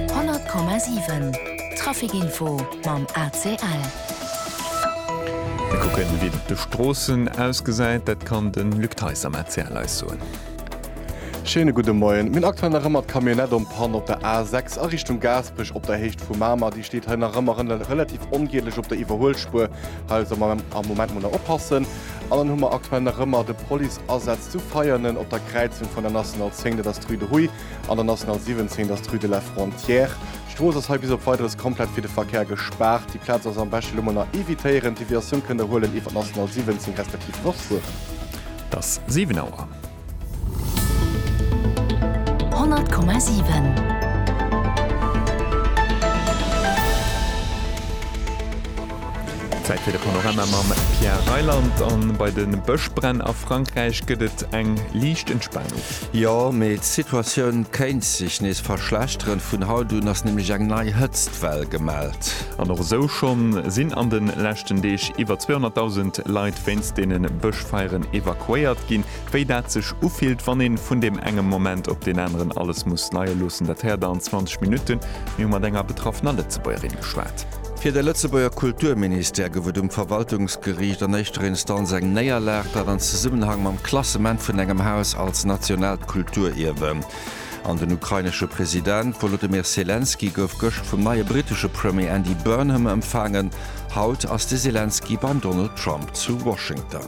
100,7 Trafic Info mam ACL. Mir kucken, wéi et op de Stroossen ausgesäit. Dat kann de Luc Theis am ACL eis soen. Schéine gudde Moien. Mir hunn aktuell nach ëmmer d'Camionnette en panne op der A 6 a Richtung Gaasperech op der Héicht vu Mamer. Déi steet hei nach ëmmer relativ ongielech op der Iwwerhuelspuer. Hei also am Moment mol nach oppassen. An dann hu mer aktuell nach ëmmer de Police-Asaz zu Veianen op der Kräizung vun der National 10, dat ass d'Rue de Huy, an der National 17, dat ass d'Rue de la Frontière. D'Strooss ass hei bis op Weideres komplett fir de Verkär gespaart. Déi Plaz ass am beschte lo mol nach evitéieren. D'Deviatioun kënnt Der huelen iwwer d'National 17 respektiv Nordfueren. T'ass 7 Auer. Zäit fir de Panorama mam Pierre Reyland. A bei de Bëschbränn a Frankräich gëtt et eng liicht Entspanung. Jo, mee d'Situatioun kéint sech nees verschlechteren. Vun haut un ass nämlech eng nei Hëtztwell gemellt. An och esou schonn sinn an den leschten Deeg iwwer 200.000 Leit wéinst deenen Bëschfeieren evakuéiert ginn. Wéi dat sech ufillt wann een vun deem engem Moment op deen aneren alles muss leie loossen, dat héiert der an 20 Minutten. Mir hu mat enger betraffener Lëtzebuergerin geschwat. Fir de Lëtzebuerger Kulturministère gouf et um Verwaltungsgeriicht an éischter Instanz eng Néierlag, dat an Zesummenhang mam Klassement vun engem Haus als nationaalt Kulturierwe. An den ukrainesche President Wolodymyr Selenskyj gouf gëscht vum neie brittesche Premier Andy Burnham empfaangen. Haut ass de Selenskyj beim Donald Trump zu Washington.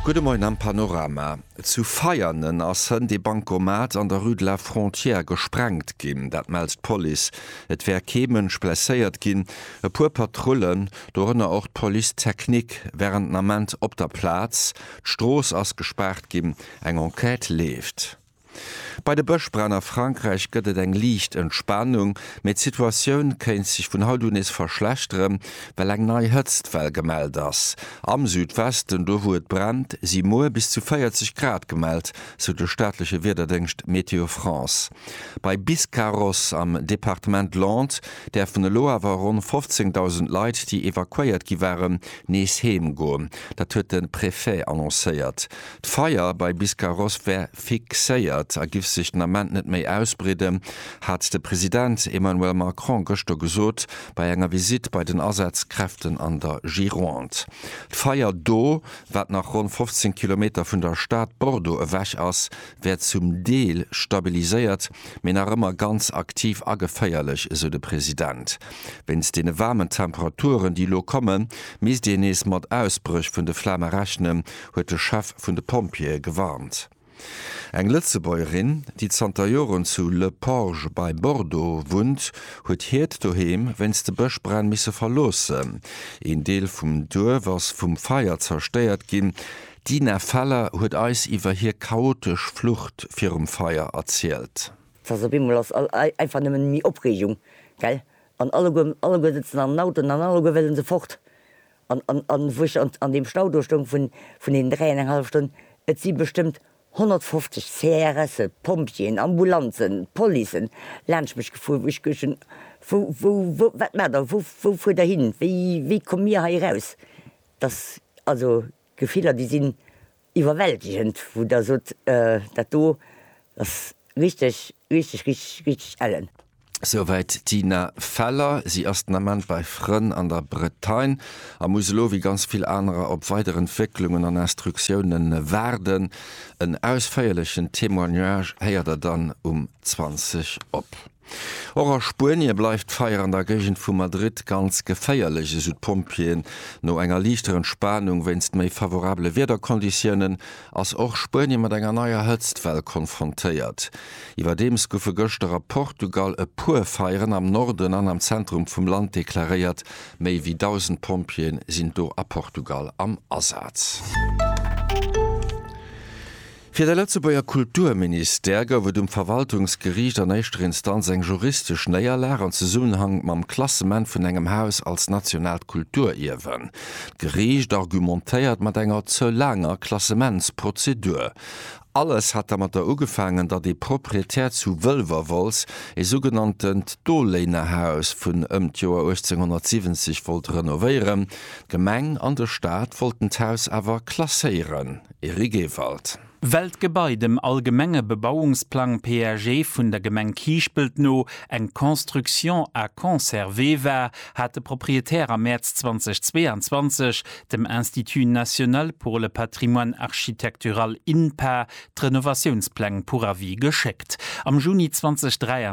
Gudde Moien am Panorama. Zu Veianen ass hënt ee Bankomat an der Rue de la Frontière gesprengt ginn. Dat mellt d'Police. Et wär kee Mënsch blesséiert ginn. E puer Patrullen, dorënner och d'Police technique, wären den Ament op der Plaz. D'Strooss ass gespaart ginn. Eng Enquête leeft. Bei de Bëschbränn a Frankräich gëtt et eng liicht Entspanung, mee d'Situatioun kéint sech vun haut u nees verschlechteren, well eng nei Hëtztwell gemellt ass. Am Südwesten, do wou et brennt, si muer bis zu 40 Grad gemellt, sou de staatleche Wiederdéngscht Météo France. Bei Biscarrosse am Departement Landes däerfen elo awer ronn 15.000 Leit, déi evakuéiert gi waren, nees heem goen. Dat huet de Prefet annoncéiert. D'Feier bei Biscarrosse wär fixéiert a giff sech den Ament net méi ausbreeden, hat de President Emmanuel Macron gëschter gesot bei enger Visitt bei den Asazkräften an der Gironde. D'Feier do, wat nach ronn 15 Kilometer vun der Stad Bordeaux ewech ass, wär zum Deel stabiliséiert, mee nach ëmmer ganz aktiv a geféierlech, esou de President. Wéinst deene waarmen Temperaturen, déi elo kommen, misst een nees mat Ausbréch vun de Flame rechnen, huet de Chef vun de Pompjeeë gewarnt. Eng Lëtzebuergerin, déi zanter Joren zu Le Porge bei Bordeaux wunnt, huet hiert Doheem wéinst de Bëschbränn misse verloossen. Een Deel vum Duerf ass vum Feier zerstéiert ginn. D'Dina Feller huet eis iwwer hir chaotesch Flucht virum Feier erzielt. D'Sass op eemol ass einfach nëmmen méi Opreegung, gell? An alleguer, alleguer sëtzen an den Autoen an alleguer wëllen se fort. An, an, an wou ech an deem Stau do stoung vun, vun deenen dräi an eng hallef Stonn, et si bestëmmt 150 CRSe, Pompjeeën, Ambulanzen, Policen laanscht mech gefuer, wou ech geduecht hunn, wou, wou, wou, wat maacht Der, wou, wou fuert Der hin, wéi, wéi komme mir hei eraus? Dass, also, Gefiller déi sinn iwwerwältegend, wou der sot dat do ass richteg, richteg, richteg, richteg ellen. Souwäit d'Tina Feller. Si ass den Ament bei Frënn an der Bretagne a muss elo wéi ganz vill anerer op weider Entwécklungen an Instruktioune waarden. En ausféierlechen Témoignage héiert der dann um 20 op. Och a Spuenie bleift d'Feier an der Géigend vu Madrid ganz geféierlech, esou d'Pompjeeën. No enger liichter Entspanung wéinst méi favorabele Wiederkonditiounen, ass och Spuenie mat enger neier Hëtztwell konfrontéiert. Iwwerdeems goufe gëschter a Portugal e puer Feieren am Norden an am Zentrum vum Land deklaréiert. Méi wéi 1.000 Pompjeeë sinn do a Portugal am Asaz. Fir de Lëtzebuerger Kulturministère gouf et um Verwaltungsgeriicht an éischter Instanz eng juristesch Néierlag an Zesummenhang mam Klassement vun engem Haus als nationaalt Kulturierwen. D'Geriicht argumentéiert mat enger ze laanger Klassementsprozedur. Alles hat dermatter ugefaangen, datt ee Proprietär zu Wëlwerwolz ee sougenanntent Doléinerhaus vun ëm d'Joer 1870 wollt renovéieren. D'Gemeng an de Staat wollten d'Haus awer klasséieren. Eric Ewald. Well d'Gebai dem allgemenge Bebauungsplang, PAG, vun der Gemeng Kiischpelt no eng Construction à conserver war, hat de Proprietär am Mäerz 2022 dem Institut national pour le patrimoine architectural, INPA, d'Renovatiounspläng pour avis geschéckt. Am Juni 2023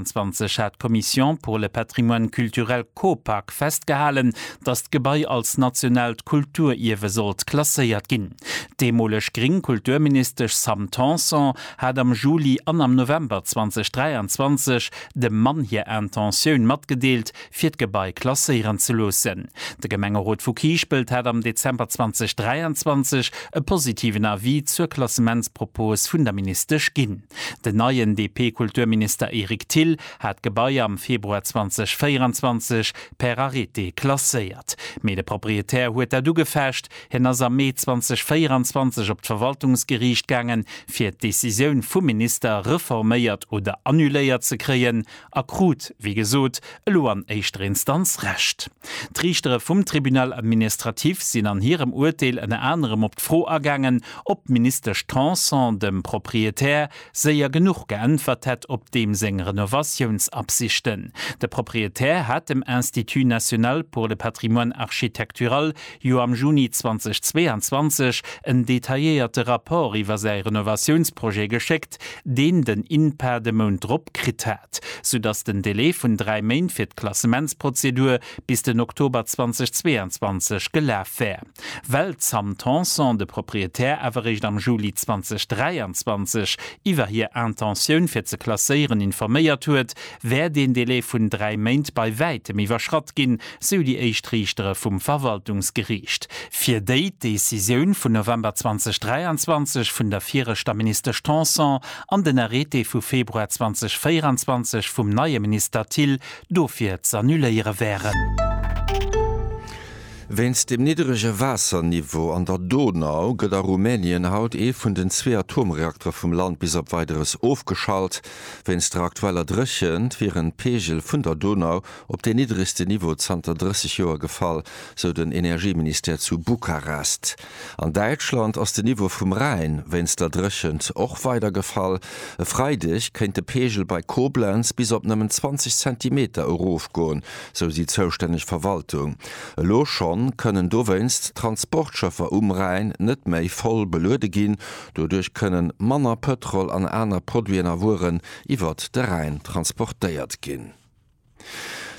hat d'Commission pour le patrimoine culturel, Copac, festgehalen, datt d'Gebai als nationaalt Kulturierwe sollt klasséiert ginn. D'deemoleg gring Kulturministesch Sam Tanson hat am Juli an am November 2023 dem Mann hir Intentioun matgedeelt, fir d'Gebai klasséieren ze loossen. De Gemengerot vu Kiischpelt hat am Dezember 2023 e positiven Avis zur Klassementspropos vun der Ministesch ginn. Den neien DP-Kulturminister Eric Thill hat d'Gebai am Februar 2024 per Arrêté klasséiert. Mee de Proprietär huet dat ugefecht, Hien ass am Mee 2024 op d'Verwaltungsgeriicht gaangen, fir d'Decisioun vum Minister reforméiert oder annuléiert ze kréien, a krut, wéi gesot, elo an éischter Instanz Recht. D'Riichtere vum Tribunal administratif sinn an hirem Urteel ënner anerem op d'Fro agaangen, ob d'Ministesch Tanson dem Proprietär séier genuch geäntwert hätt op deem seng Renovatiounsabsichten. De Proprietär hat dem Institut national pour le patrimoine architectural jo am Juni 2022 en detailléierte Rapport iwwer säi Renovatiounsprojet geschéckt, deen den INPA de Mount drop kritt hat, soudass den Delai vun dräi Méint fir d'Klassementsprozedur bis den Oktober 2022 gelaf wär, well d'Sam Tanson, de Proprietär, awer réischt am Juli 2023 iwwer hir Intentioun fir ze klasséieren informéiert huet, wär deen Delai vun dräi Méint bei wäitem iwwerschratt ginn, sou déi éischt Riichtere vum Verwaltungsgeriicht. Fir déi d'Decisioun vun November 2023 vun der viregter Ministesch Tanson an den Arrêté vu Februar 2024 vum neie Minister Thill dofir z'annuléiere wären. Wéinst dem nidderege Waasserniveau an der Donau gëtt a Rumänien haut ee vun den zwee Atomreaktere vum Land bis op Weideres ofgeschalt. Wéinst der aktueller Dréchent wieren d'Peegel vun der Donau op deen niddregsten Niveau zanter 30 Joer gefall, sou den Energieministère zu Bukarest. An Däitschland ass den Niveau vum Rhäin wéinst der Dréchent och weider gefall. E Freideg kéint de Peegel bei Koblenz bis op nëmmen 20 Zentimeter erofgoen, sou déi zoustänneg Verwaltung. Elo schonn kënnen dowéinst d'Transportschëffer um Rhäin net méi voll beluede ginn. Doduerch kënne manner Pëtrol an aner Produiten a Wueren iwwert de Rhäin transportéiert ginn.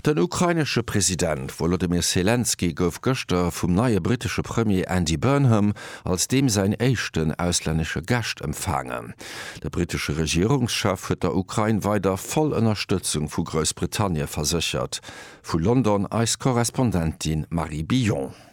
Den ukrainesche President Wolodymyr Selenskyj gouf gëschter vum neie brittesche Premier Andy Burnham als deem säin éischten auslännesche Gast empfaangen. De brittesche Regierungschef huet der Ukrain weider voll Ënnerstëtzung vu Groussbritannie verséchert. Vu London eis Korrespondentin Marie Billon.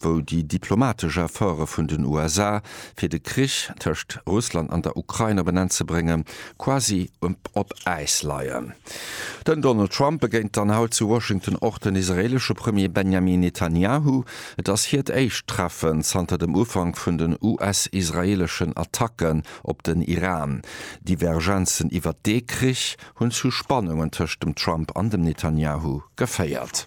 wou déi diplomatesch Efforte vun den USA, fir de Krich tëscht Russland an der Ukrain op en Enn ze bréngen, quasi op Äis leien. Den Donald Trump begéint dann haut zu Washington och den israeelesche Premier Benjamin Netanyahu. Et ass hiert éischt Treffen zanter dem Ufank vun den US-israeeleschen Attacken op den Iran. Divergenzen iwwert dee Krich hunn zu Spannungen tëscht dem Trump an dem Netanyahu geféiert.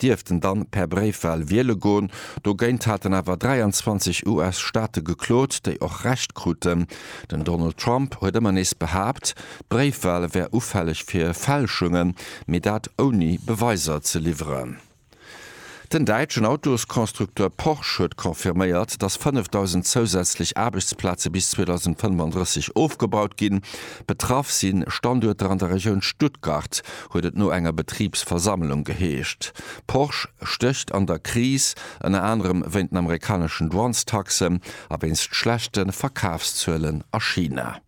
dierften dann per Bréifwal wiele goen. Dogéint haten awer 23 US-Staate geklot, déi och Recht kruten. Den Donald Trump huet ëmmer nees behaapt, d'Bréifwal wär ufälleg fir Fälschungen, mee dat ouni Beweiser ze liwweren. Den däitschen Autosconstructeur Porsche huet confirméiert, datt 5.000 zousätzlech Aarbechtsplaze bis 2035 ofgebaut ginn. Betraff si Standuerter an der Regioun Stuttgart, huet et no enger Betribsversammlung geheescht. Porsche stécht an der Kris, ënner anerem wéint den amerikaneschen Douanestaxen a wéinst schlechte Verkafszuelen a China.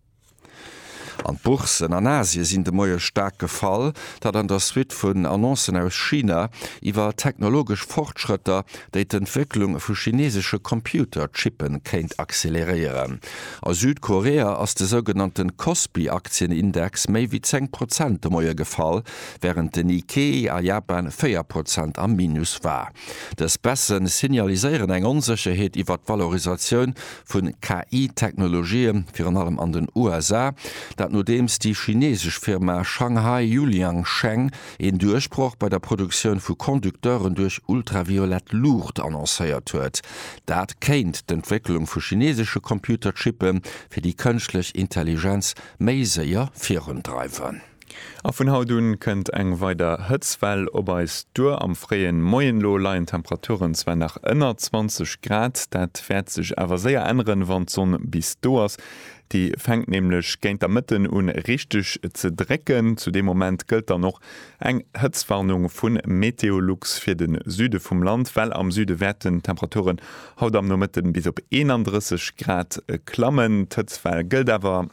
An d'Bourssen an Asie sinn de Moie staark gefall, dat an der Suite vun Annoncen aus China iwwer technologesch Fortschrëtter, déi d'Entwécklung vu chinesesche Computer-Chippe kéint acceleréieren. A Südkorea ass de sougenannte Kospi-Aktienindex méi wéi 10 Prozent de Moie gefall, wärend de Nikkei a Japan 4 Prozent am Minus war. Dës Baisse signaliséieren eng Onsécherheet iwwert d'Valorisatioun vu KI-Technologië virun allem an den USA, dat nodeems déi chinesesch Firma Shanghai Yuliang Sheng een Duerchbroch bei der Produktioun vu Conducteuren duerch ultraviolett Luucht annoncéiert huet. Dat kéint d'Entwécklung vu chinesesche Computerchippe fir déi kënschtlech Intelligenz méi séier virundreiwen. A vun haut un kënnt eng weider Hëtzwell op eis duer. Am fréie Moien elo leien d'Temperaturen zwar nach ënner 20 Grad, dat wäert sech awer séier änneren, wann d'Sonn bis do ass. Déi fänkt nämlech géint der Mëtten un richteg ze drécken. Zu deem Moment gëllt dann och eng Hëtztwarnung vu Meteolux fir de Süde vum Land, well am Süde wäerten d'Temperaturen haut am Nomëtte bis op 31 Grad klammen. D'Hëtztwell gëllt awer,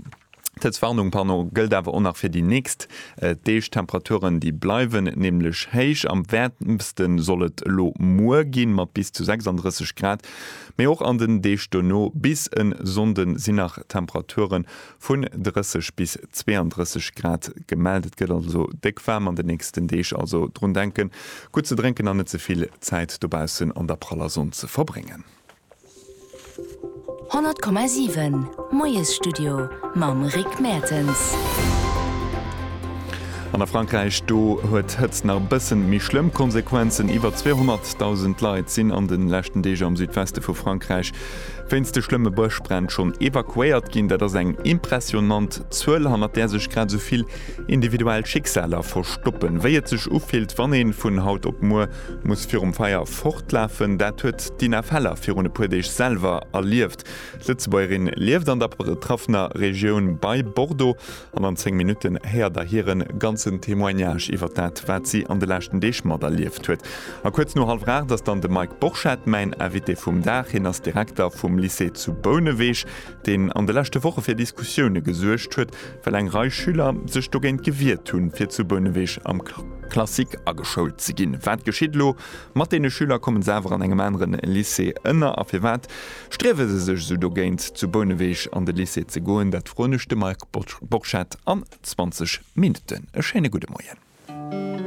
d'Hëtztwarnung, pardon, gëllt awer och nach fir déi nächst Deeg. D'Temperaturen, déi bleiwen nämlech héich. Am wäermste soll et elo muer ginn, mat bis zu 36 Grad. Mee och an den Deeg dono bis en Sonnden sinn nach Temperature vun 30 bis 32 Grad gemellt. Et gëtt also déck waarm an den nächsten Deeg, also drun denken gutt ze drénken an net ze vill Zäit dobaussen an der praller Sonn ze verbréngen. 100,7 Moiesstudio mam Rick Mertens. An a Frankräich, do huet d'Hëtzt nach e bëssen méi schlëmm Konsequenzen. Iwwer 200.000 Leit sinn an de leschten Deeg am Südweste vu Frankräich wéinst de schlëmme Bëschbränn schonn evakuéiert ginn. Dat ass eng impressionant Zuel, hannert där sech grad esou vill individuell Schicksaler verstoppen, wéi et sech ufillt, wann een vun haut op muer muss virum Feier fortlafen. Dat huet d'Inna Feller virun e puer Deeg selwer erlieft. D'Lëtzebuergerin lieft an der betraffener Regioun bei Bordeaux An an 10 Minutten héiert der hiren ganzen Témoignage iwwert dat, wat si an de leschten Deeg materlieft huet. A kuerz no hallwer 8 ass dann de Mike Borchert mäin Invité vum Dag. Hien ass Direkter vum Lycée zu Bouneweg, deen an de leschte Woche fir Diskussioune gesuergt huet, well eng Rei Schüler sech dogéint gewiert hunn, fir zu Bouneweg am Classique ageschoult ze ginn. Wat geschitt elo? Mat deene Schüler kommen se awer an engem aneren Lycée ënner. A firwat striewe se sech esou dogéint, zu Bouneweg an de Lycée ze goen? Dat froen ech de Marc Borchert an 20 Minutten. E schéine gudde Moien.